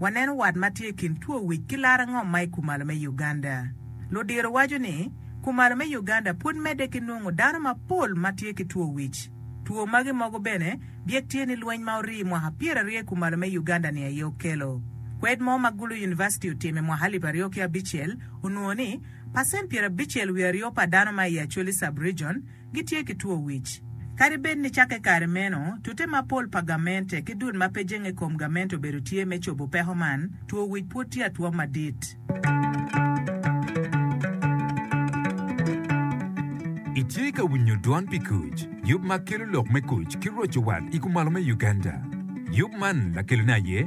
Waneno wat ma tye i kin two wic ki laro ngom ma i kumalo me Uganda. Ludiro waco ni, kumalo me Uganda pud medde ki nongo dano mapol ma tye ki two wic. Two magi mogo bene byek tye ni lweny ma orii mwaka pyeraryo i kumalo me Uganda-ni aye okelo. Kwed mo ma Gulu University otimo i mwaka alip aryo ki abicel onwongo ni pacent pyerabicel wiye aryo pa dano ma i Acholi Sub-Region, gitye ki two wic. Kadi bed ni cakke kare meno, tute mapol pa gamente ki dul ma pe jenge i kom gamente obedo tye me cobo peko man, two wic pwod tye atwom madit. Itye ka winyo dwon pi kuc, yub ma kelo lok me kuc ki roco wat i kumalo me Uganda. Yub man lakelone aye.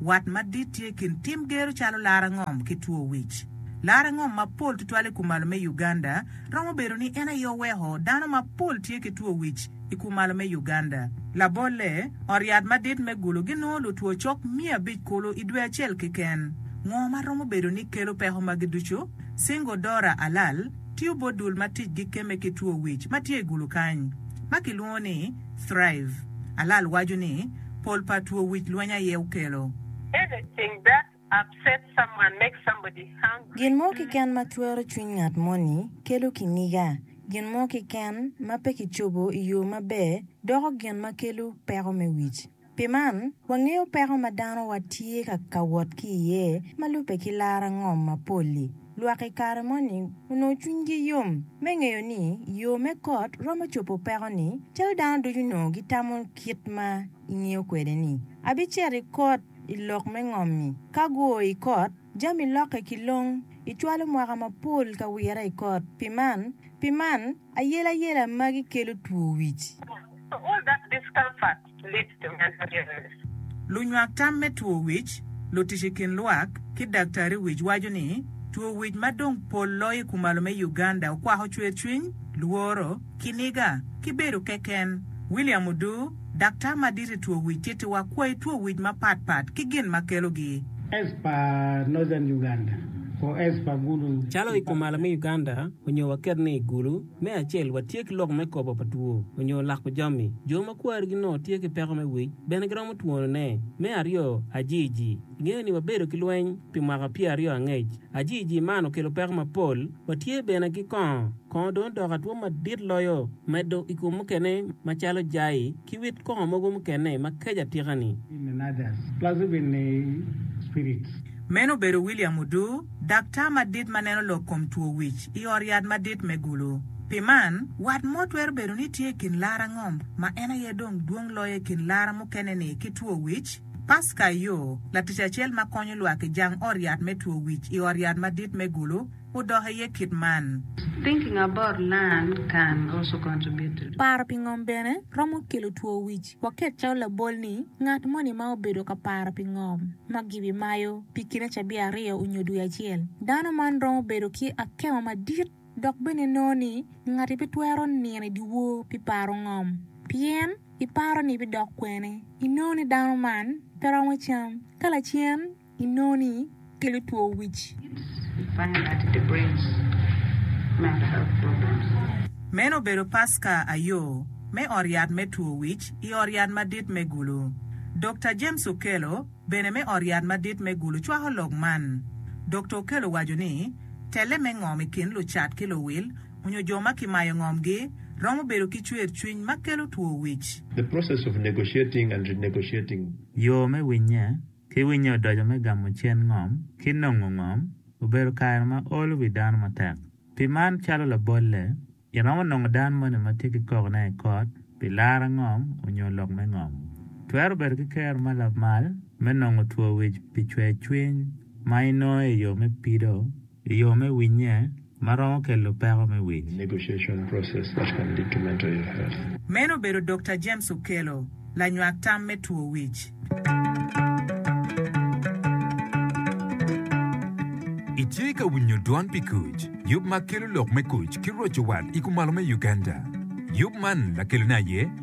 Wat madit tye i kin tim gero calo laro angom ki two wic. Laro angom mapol tutwal i kumalo me Uganda romo bedo ni en aye oweko dano mapol tye ki two wic i kumalo me Uganda. Labolle, ot yat madit me Gulu ginongo lutwo cok miya abic kulu i dwe acel keken. Ngo ma romo bedo ni kelo peko magi ducu? Singo Dora Alal tiyo bot dul ma ticgi kemme ki two wic ma tye i Gulu kany, ma kilwongo ni, Thrive, Alal waco ni, Pol pa two wic lweny aye okelo. Anything that upsets someone makes somebody hungry Gin mo to eat. kiken ma twero cwiny ngat moni kelo kinyiga. Gin mo kiken ma pe kicobo i yo maber doko gin ma kelo peko me wic. Pi man, wangeyo peko ma danowa tye ka wot ki iye ma lubbe ki lara ngom mapol-li. Lwak i kare moni onongo cwinygi yom me ngeyo ni yo me kot romo cobo peko-ni. Calo dano ducu onongo gitamo kit ma ingeyo kwede-ni, abicito i kot i lok me ngom-mi. Ka guo i kot, jami lokke ki long. Icwalo mwaka mapol ka wire i kot. Pi man, pi man, ayelayela magi kelo two wic. Lunywak tam me two wic, lutic i kin lwak, ki daktari wic waco ni two wic ma dong pol loyo i kumalo me Uganda okwako cwercwiny, lworo, kiniga, ki bedo keken. William Odu, daktar madit i two wic tittiwa kwai two wic mapat pat ki gin ma kelogi. As pa Northern Uganda or as pa Gulu Calo i kumalo me Uganda onyo waket ni Gulu. Me acel, watye ki lok me kobo pa two onyo lako jami. Jo ma kwarigi nongo tye ki peko me wic bene giromo twonone. Me aryo, ajiiji. Ingeyo ni wabedo ki lweny pi mwaka pyer aryo angec. Ajiiji man okelo peko mapol. Watye bene ki kongo. Kongo dong odoko atwo madit loyo, medo i kom mukene macalo jai, Ki wit koko mogo mukene ma kec atika ni. Meno obedo William Udu, daktar madit ma neno lok kom two wic i ot yat madit me Gulu. Pi man, wat mo twero bedo ni tye i kin lara ngom ma en aye dong dwong loyo i kin lara mukene-ni ki two wic? Pasca Ayo, latic acel ma konyo lwak i jang ot yat me two wic i ot yat madit me Gulu, odok aye kit man. Thinking about land can also contribute to. Paro pi ngom bene romo kelo two wic. Waket calo labol ni, ngat moni ma obedo ka paro pi ngom ma gibi mayo pi kine cabiya aryo onyo dwe acel, dano man romo bedo ki akemo madit dok bene nongo ni ngati pe twero nino i dyewor pi paro ngom pien iparo ni ibidok kwene. Inongo ni dano man pe romo cam ka lacen. inongo ni kelo two wic. Meno obedo Paska ayo me ot yat me two wic i ot yat madit me Gulu. Dokta James Okello bene me ot yat madit me Gulu cwako lok man. Dokta Okello waco ni, Telle me ngom i kin lucat ki luwil onyo jo ma kimayo ngomgi romo bedo ki cwer cwiny ma kelo two wic. The process of negotiating and renegotiating. Yo me winye. ki winyo odoco me gamo cen ngom ki nongo ngom obedo kare ma olo wi dano matek. Pi man, calo labolle, iromo nongo dano moni ma tye ki kokone i kot pi laro angom onyo lok me ngom. Twero bedo ki kero ma lamal me nongo two wic pi cwer cwiny ma inongo i yo me pido. i yo me winye ma romo kelo peko me wic. Meno obedo Dokta James Okello, lanywak tam me two wic. Itye ka winyo Dwan pi Kuc, yub ma kelo lok me kuc ki roco wat i kumalo me Uganda. Yub man lakelone aye.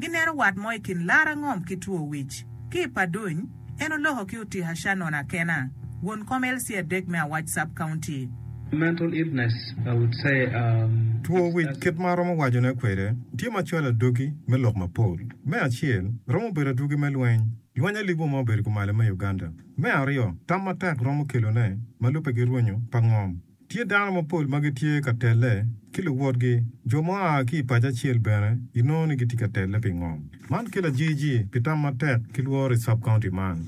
gineno wat mo i kin lar angom ki two wic. Ki i Paduny, en oloko ki Otika Shannon Akena, won kom LC adek me Awac Sub County. Mental illness I would say um Two wic kit ma aromo wacone kwede tye ma cwalo adwogi me lok mapol. Me acel, romo bedo adwogi me lweny, lweny alibwa ma obedo kumalo me Uganda. Me aryo, tam matek romo kelone ma lubbe ki rwonyo pa ngom. Tye dano mapol ma gitye ka telle ki luwotgi, jo ma oa ki i paco acel bene inongo ni gitye ka telle pi ngom. Man kelo ajijir pi tam matek ki lworo i sub-county man.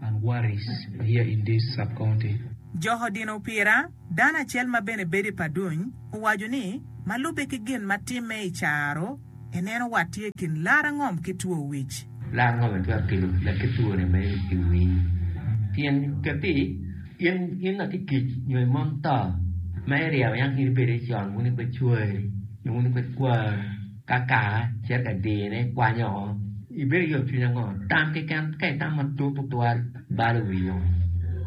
and worries here in this sub-county. Jok odino opira, Dano acel ma bene bedo i Paduny owaco ni, ma lubbe ki gin ma timme i caro, Ineno wat tye i kin lar angom ki two wic. Lar angom-mi twero kelo leb ki twone me i wii. Pien kati in in a ki kic nyo i mon to ma iryeo yam in ibedi con wun ipe cwari nyo wun ipe kwari ka kaka cito ka dine ikwanyo oko ibedo ki yom cwiny ango? Tam keken ka itam matut tutwal balo wii woko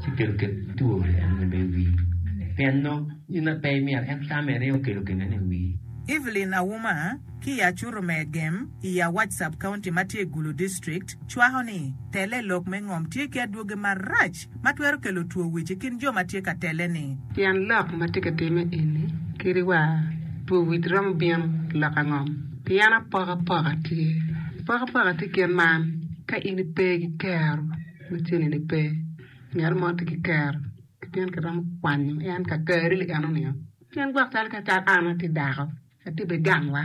ci kelo kit twori eno me i wii pien nongo Gin ma pe imito en tamme ringo okelo gennene i wii. Evelyn Auma ki i Acuto me Agem i Awac Sub-County ma tye i Gulu District cwako ni, Tele i lok me ngom tye ki adwogi marac ma twero kelo two wic i kin jo ma tye ka tele-ni. Pien lok ma tye ka timme eni kadi wa, two wic romo bino i lok angom pien apokapoka tye. Apokapoka tye kit man, Ka in ipe ki kero, macini-ni pe, ngat mo tye ki kero. Pien kiromo kwanyo en kakare ni en omiyo. Pien gwok calo ka cal an atye dako, atye bene gang wa.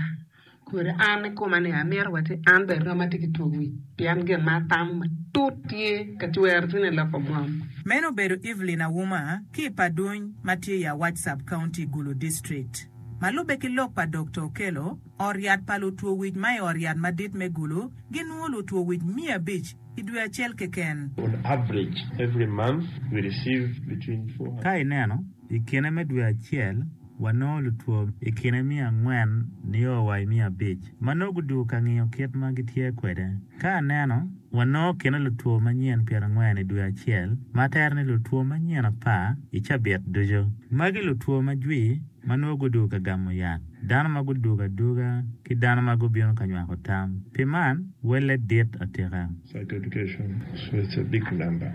Kodi an i koma ni amito wa ci an bene rom atye ki two wic, pien gin ma atamo matut tye ka cwero cwinya loko gwom. Meno obedo Evelyn Auma ki i Paduny ma tye i Awac Sub-County, Gulu District. Ma lubbe ki lok pa Dokta Okello, ot yat pa lutwo wic ma i ot yat madit me Gulu ginwo lutwo wic miya abic i dwe acel keken. On average, every month we receive between 400. Ka ineno, i kine me dwe acel, wanongo lutwo i kine miya angwen nio wa i miya abic ma nongo gudwogo ka ngiyo kit ma gitye kwede. Ka aneno, wanongo kine lutwo manyen pyerangwen i dwe acel, ma tere ni lutwo manyen apar i cabit ducu. Magi lutwo ma jwi. ma nongo gudwogo ka gamo yat, dano ma gudwogo adwoga, ki dano ma gubino ka nywako tam. Pi man, welle dit atika. Certification switch a big number.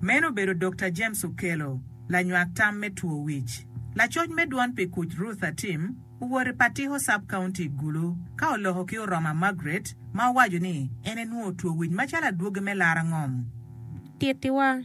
Meno obedo Dokta James Okello, lanywak tam me two wic. Lacoc me dwon pi kuc Ruth Atim owoto i Patiko Sub-County i Gulu ka oloko ki Oroma Margaret ma owaco ni en enwongo two wic macalo adwogi me larangom. Tittiwa,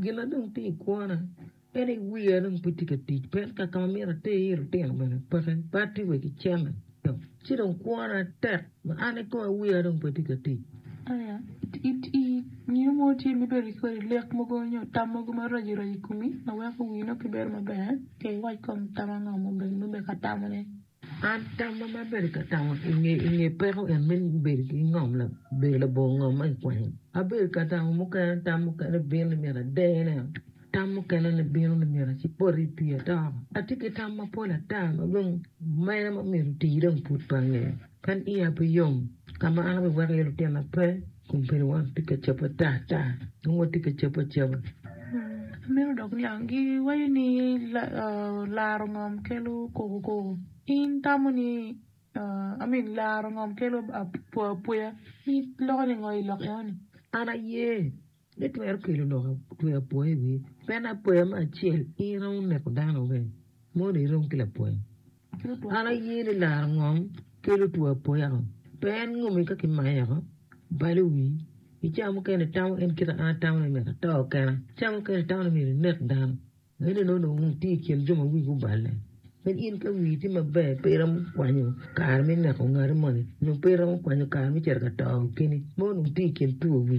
Gin ma dong tye i kwona en aye wiya dong pe tye ka tic pien ka ma myero ater iye lutino bene peke bad tye wa ki cente to ci dong kwona tek ma an ni kong wiya dong pe tye ka tic. Aya, I nino mo tye ma ibedo ki kodi lek mogo nyo tam mogo maraco raco i komi ma weko wii nongo pe bedo maber? Ka iwac kong tam ango ma obedo ka tamone? An tam ma mar bedo ka tamo i nge peko en me bedo ki ngom bedo labongo ngom ma kikwanyo. Abedo ka tamo mukene tam mukene bino ni myero adene, tam mukene ni bino ni myero apot i pii ato. Atye ki tam mapol ata ma dong meno ma myero otii dong pud pe angeyo. Kadi iya pe yom ka ma an abiweko iye lutina pe. Kun pien wan pe ka cabo ata ata, dong watye ka cabo acaba. Meno dok niang, giwaco ni laro ngom kelo koko koko, in tamo ni, I mean laro ngom kelo apwa apweya, in iloko ni ngo i lok eno ni? An aye ni twero kelo loko tweyo apwoya i wiye, pien apwoya me acel in iromo neko dano bene, mono irom ki lapwoya. An aye ni laro ngom kelo two apoya o, pe en ngomi ka ki maye oko, balo wi. I cawa mukene i tamo en kite an atamo ni myero ato kena, cawa mukene i tamo ni myero inek dano, en eno dong itye i kin jo ma wigi oballe. Kadi in ka wii tye maber pe iromo kwanyo kare me neko ngati moni, nyo pe iromo kwanyo kare me cito ka to keni, mono dong itye i kin two wi.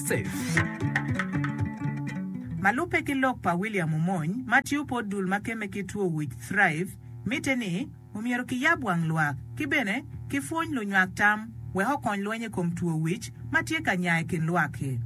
Ma lubbe ki lok pa William Omony ma tiyo pot dul ma kemme ki two wic, Thrive, mitte ni omyero kiyab wang lwak ki bene kipwony lunywak tam wek okony lweny i kom two wic ma tye ka nya i kin lwak-ki.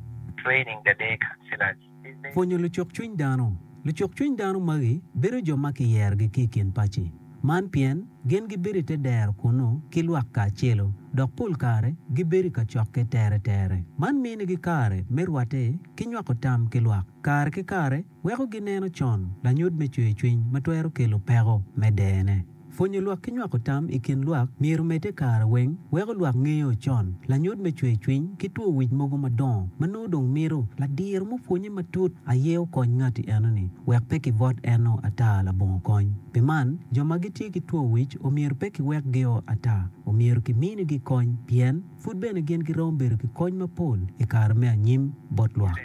Pwonyo lucuk cwiny dano. Lucuk cwiny dano magi bedo jo ma kiyerogi ki i kin paci. Man pien gin gibedo i te dero kunnu ki lwak kacelo, dok pol kare gibedo i kacokke teretere. Man minigi kare me rwatte ki nywako tam ki lwak. Kare ki kare weko gineno con lanyut me cwercwiny ma twero kelo peko me dene. Pwonyo lwak ki nywako tam i kin lwak myero omedde kare weng weko lwak ngeyo con lanyut me cwercwiny ki two wic mogo madongo ma nongo dong mito ladiro mupwonye matut aye okony ngati enoni wek pe kibwot eno ata labongo kony. Pi man, jo ma gitye ki two wic omyero pe kiwek gio ata. Omyero kiminigi kony pien pud bene gin giromo bedo ki kony mapol i kare me anyim bot lwak.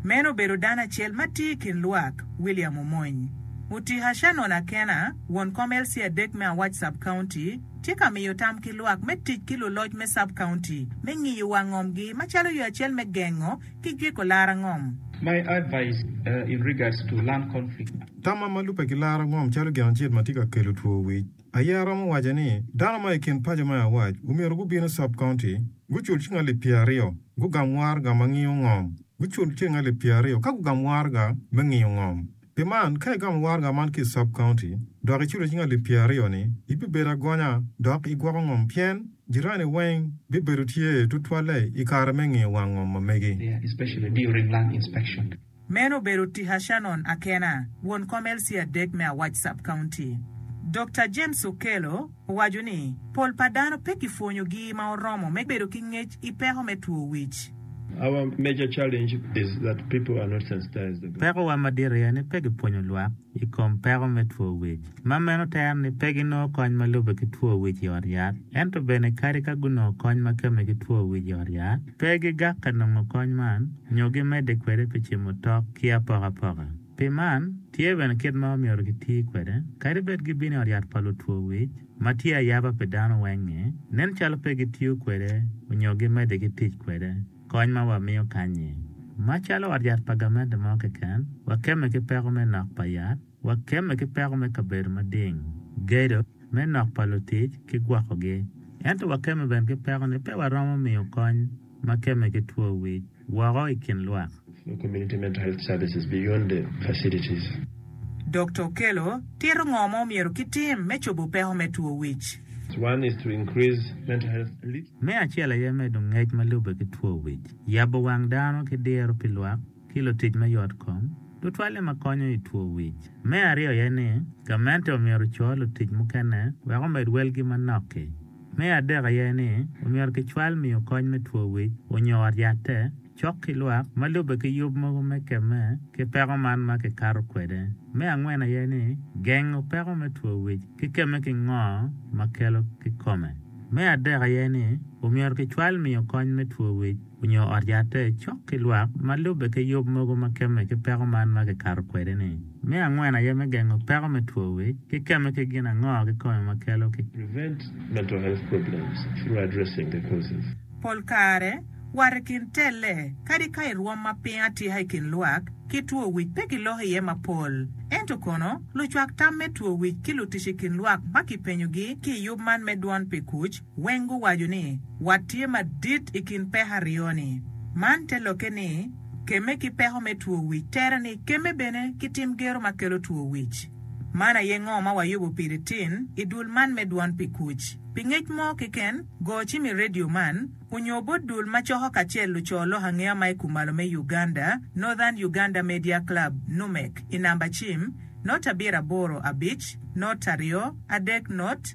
Meno obedo dano acel ma tye i kin lwak, William Omony. Mutika Shannon Akena, won kom LC adek me Awac Sub-County, tye ka miyo tam ki lwak me tic ki luloc me sub-county me ngiyo wang ngomgi macalo yo acel me gengo ki jeko lar angom. My advice in regards to lung conflict. Tamma ma lubbe ki lar angom calo gin acel ma tye ka kelo two wic aye aromo waco ni dano ma i kin paco ma awac omyero gubin i sub county gucul cing alip pyer aryo gugam warga ma ngiyo ngom gucul cing alip pyer aryo ka gugam warga me ngiyo ngom. Pi man, ka igamo waraga man ki i sub-kaunti dok iculo cing alip pyeraryo-ni, ibibedo agonya dok igwoko ngom pien jirani weng bibedo tye tutwalle i kare me ngiyo wang ngom ma megi. Meno obedo tika Shannon Akena, won kom LC adek me awac sub-kaunti. Dokta James Okello. Owaco ni, Pol pa dano pe kipwonyogi ma oromo me bedo ki ngec i peko me two wic. Pekowa madit aye ni pe gipwonyo lwak i kom peko me two wic. Ma meno tero ni pe ginongo kony ma lubbe ki two wic i ot yat. Ento bene kadi ka gunongo kony ma kemme ki two wic i ot yat, pe gigakke nongo kony man nyo gimedde kwede pi cimo tok ki apokapoka. Pi man, tye bene kit ma omyero giti kwede. Kadi bed gibino i ot yat pa lutwo wic, ma tye ayaba pi dano weng-ngi, nen calo pe gitiyo kwede nyo gimedde ki tic kwede. Kony ma wamiyo kanyi. Macalo ot yat pa gamente mo keken, wakemme ki peko me nok pa yat, wakemme ki peko me kabedo mading, gedo, me nok pa lutic, ki gwokogi. Ento wakemme bene ki peko ni pe waromo miyo kony ma kemme ki two wic woko i kin lwak. Community Mental Health Services beyond the facilities. Dokta Okello tito ngo ma omyero ki tim me cobo peko me two wic. One is to increase mental health literacy. Me acel aye medo ngec ma lube ki two wic, yabo wang dano ki diro pi lwak. ki lutic me yotkom tutwalle ma konyo i two wic. Me aryo aye ni, gamente omyero oco lutic mukene wek omed welgi manok-ki. Me adek aye ni, omyero kicwal miyo kony me two wic onyo ot yatte cok ki lwak ma lubbe ki yub mogo me kemme ki peko man ma kikato kwede. Me angwen aye ni, gengo peko me two wic ki kemme ki ngo ma kelo kikome. Me adek aye ni, omyero kicwal miyo kony me two wic. onyo ot yatte cok ki lwak ma lubbe ki yub mogo ma kemme ki peko man ma kikato kwede ni. Me angwen aye me gengo peko me two wic ki kemme ki gin ango ki kome ma kelo ki. Prevent mental health problems through addressing the causes. Pol kare, wat i kin telle, kadi ka i rwom ma piny atika i kin lwak, ki two wic pe giloko iye mapol. Ento kono, lucwak tam me two wic ki lutic i kin lwak ma kipenyogi ki i yub man me Dwon pi Kuc, Weng guwaco ni, Wat tye madit i kin peko aryo-ni. Man te lokke ni, kemme ki peko me two wic tere ni kemme bene ki tim gero ma kelo two wic. Man aye ngo ma wayubo piri tin i dul man me Dwon pi Kuc. Pi ngec mo keken, go cim i redio man, onyo bot dul ma coko kacel luco lok angeya ma i kumalo me Uganda, Northern Uganda Media Club, NUMEC, i namba cim, not abiro aboro abic, not aryo, adek not,